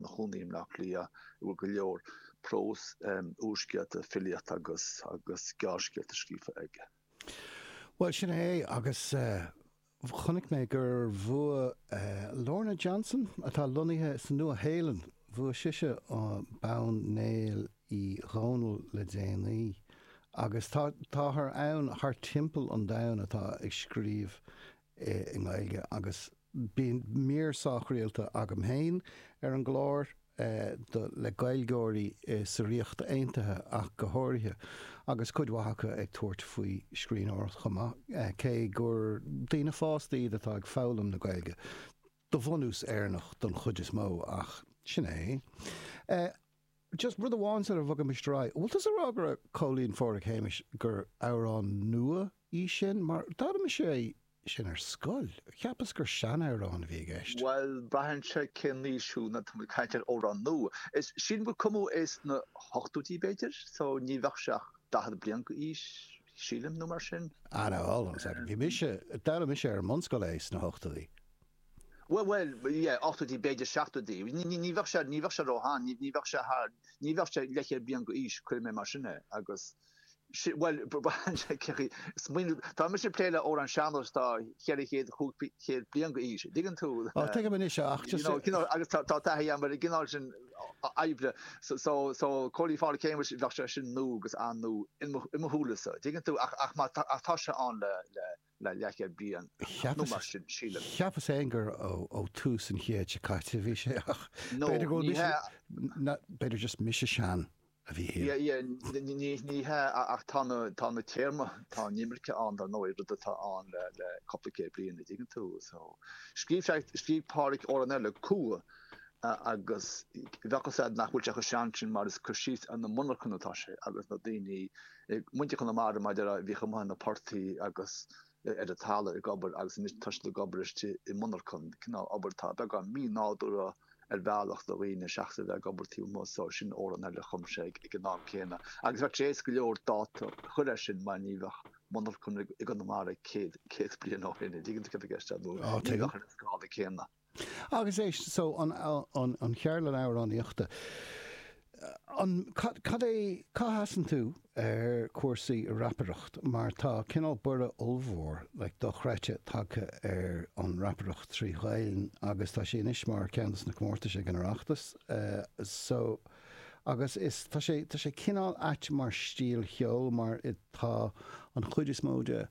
chónaí i mBleá Cliath, a bhfuil go leor próis, úrscéalta, filíocht agus agus gearrscéalta scríofa aige. Bhuel, sin é, agus chonaic mé gur bhuaigh Lorna Johnson, atá lonnaithe sa Nua-Shéalainn, bhuaigh sise bonn Néill Uí Dhónaill le déanaí, agus tá táthar ann thart timpeall an domhain atá ag scríobh i nGaeilge agus bíonn mír sách rialta agam féin ar an gclár le Gaeilgeoirí sa Ríocht Aontaithe ach go háirithe agus cuid mhaith acu ag tabhairt faoi scríbhneoireacht chomh maith, cé gur daoine fásta iad atá ag foghlaim na Gaeilge, de bhunús Éireannach don chuid is mó ach sin é. Just rud amháin sula bhogaimis ar aghaidh, an bhfuil tusa ag rá go raibh Cóilín Phádraig Shéamais, gur amhrán nua í sin? Mar d'fhoghlaim mise é sin ar scoil, cheapas gur seanamhrán a bhí i gceist. Bhuel, braitheann sé cén aois thú nuair atá muid ag caint ar amhrán nua. Sílim gur cumadh é sna hochtóidí, b'fhéidir, so ní bheadh sé ach daichead bliain d'aois, sílim, nó mar sin. Anall, anall, anall. Bhí mise, d'fhoghlaim mise ar an mbunscoil é sna hochtóidí. Bhuel, yeah, ochtóidí, b'fhéidir seachtóidí. Ní bheadh sé, ní bheadh sé róshean, ní bheadh sé thar, ní bheadh sé leathchéad bliain d'aois, cuirfidh mé mar sin é agus sin, bhuel, smaoineamh, tá mise ag plé le amhráin sean-nóis, tá cheithre chéad, cúig chéad bliain d'aois, a dtuigeann tú, Á, tuigim anois é, ach you just know, you know, agus tá taithí agam ar an gcineál sin oibre so, so, so, Cóilín Phádraig Shéamais, bheadh sé sin nua agus an-nua i mo shúilese, a dtuigeann tú, ach, ach má tá, ach tá sé ann le, le. le leathchéad bliain nó mar sin, sílim. Cheapas fhéin gur ó tús an chéid seo caite a bhí sé ach b'fhéidir go bhfuil mise, b'fhéidir just mise sin a bhí thiar. Yeah, yeah, ní hea ach tá na, tá na téarmaí, tá an imirce ann dar ndóigh, rud atá ann le, le cúpla céad bliain a' dtuigeann tú so. Scríobh sé, scríobh Pádraic amhrán eile, Cumha, agus bheadh 'fhios a'd nach bhfuil sé chomh sean sin mar is cur síos ar na monarchana atá sé agus na daoine, ag muintir Chonamara mar déarfá, bhíodh amuigh ar na portaigh agus ar an talamh ag obair agus anois tá siad ag obair istigh i monarchain, cineál obair atá beagán mí-nádúrtha ar bhealach do dhaoine seachas a bheith ag obair taobh amuigh, so sin amhrán eile a chum sé ag an am céanna agus bheadh sé éasca go leor dáta a chur air sin mar ní bheadh monarchain i gConamara céad bliain ó shin, a' dtuigeann tú céard atá i gceist a'm, nó ní bheadh ar an scála céanna. Agus eh so an, an, an cheardlann amhránaíochta, an, cad, cad é, cá sheasann tú ar chúrsaí rapaireacht mar tá cineál borradh ollmhór like dochreidte tagtha ar an rapaireacht trí Ghaelainn agus tá sé anois mar ceann de na comórtais ag an Oireachtas so agus is, tá sé, tá sé cineál ait mar stíl cheoil mar tá an chuid is mó de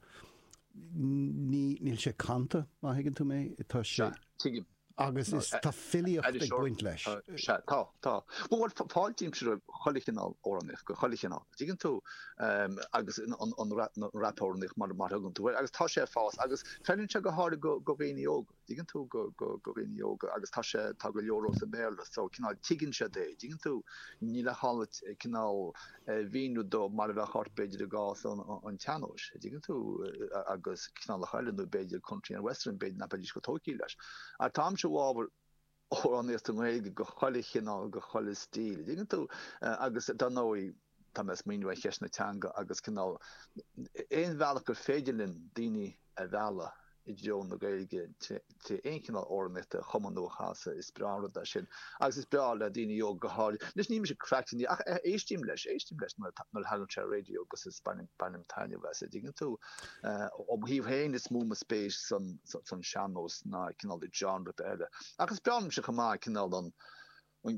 Níl sé canta, má thuigeann tú mé. Tá sé. Sea, tuigim. Agus is, tá filíocht ag baint leis. Sea, tá, tá. Bhuel, bhuel, f- fáiltímse roimh chuile chineál amhránaíocht, de chuile chineál, tuigeann tú? Em, agus an, an, an, an, rap, an rapamhránaíocht mar, mar a thugann tú air. Agus tá sé ag fás agus feileann sé go háirid do, do dhaoine óga. dtuigeann tú, do, do, do dhaoine óga agus tá sé, tá go leor sa mBéarla so cineál tuigeann siad é, dtuigeann tú, níl a call duit cineál é a mhíniú dóibh mar a bheadh ort b'fhéidir i gcás an tseannóis, dtuigeann tú, agus cineálacha eile nó b'fhéidir country and western b'fhéidir nach mbeidís chomh tógthaí leis ach táimse i bhfábhar, amhránaíocht i nGaeilge de chuile chineál, de chuile stíl, tuigeann tú? Agus dar ndóigh, tá mé ag smaoineamh ar cheist na teanga agus cineál, aon bhealach gur féidir linn daoine a mhealladh i dtreo na Gaeilge trí aon chineál amhránaíochta a chumadh nó a chasadh, is breá an rud é sin. Agus is breá le daoine óga go háirid, anois níl mise cleachtach air ach éistím leis, éistím leis nuair a thagann sé ar an raidió agus bainim taitneamh as, a dtuigeann tú. Ó mo thaobh féin, is mó mo spéis san sean-nós ná cineál genre ar bith eile. Ach is breá liomse chomh maith cineál an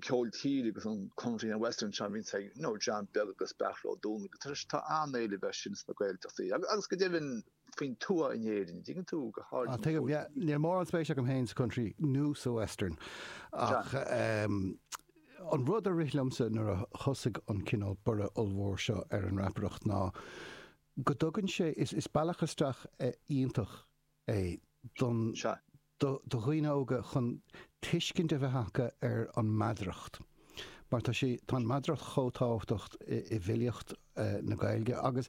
ceol tíre agus an country and western seo a bhíonns ag John Beag agus Beairtle Ó Domhnaill, tá an-éileamh ar sin sna Gaeltachtaí agus go deimhin faoin tuath in Éirinn, an dtuigeann tú, go háirid an tuath. Tuigim, yeah. Níl mórán spéis agam féin sa country nó sa western ach an rud a rith liomsa nuair a thosaigh an cineál borradh ollmhór seo ar an rapaireacht ná, go dtugann sé, is bealach isteach iontach é don, do dhaoine óga chun tuiscint a bheith acu ar an meadaracht mar tá sé, tá an mheadaracht chomh tábhachtach i bhfilíocht na Gaeilge agus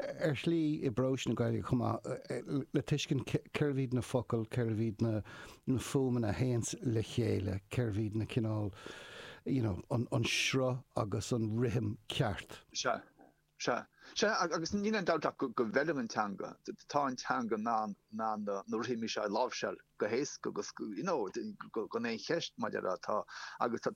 ar shlí i bprós na Gaeilge chomh maith le tuiscint cérbh iad na focail, cérbh iad na fuaimeanna a théanns le chéile, cérbh iad na cineál, you know, an sruth agus an rithim ceart. Sea. Sea, sea, agus níl aon dabht ach go bhfeileann an teanga, tá an teanga in ann na rithimí seo a láimhseáil go héasca agus gan aon cheist maidir leo, agus tá.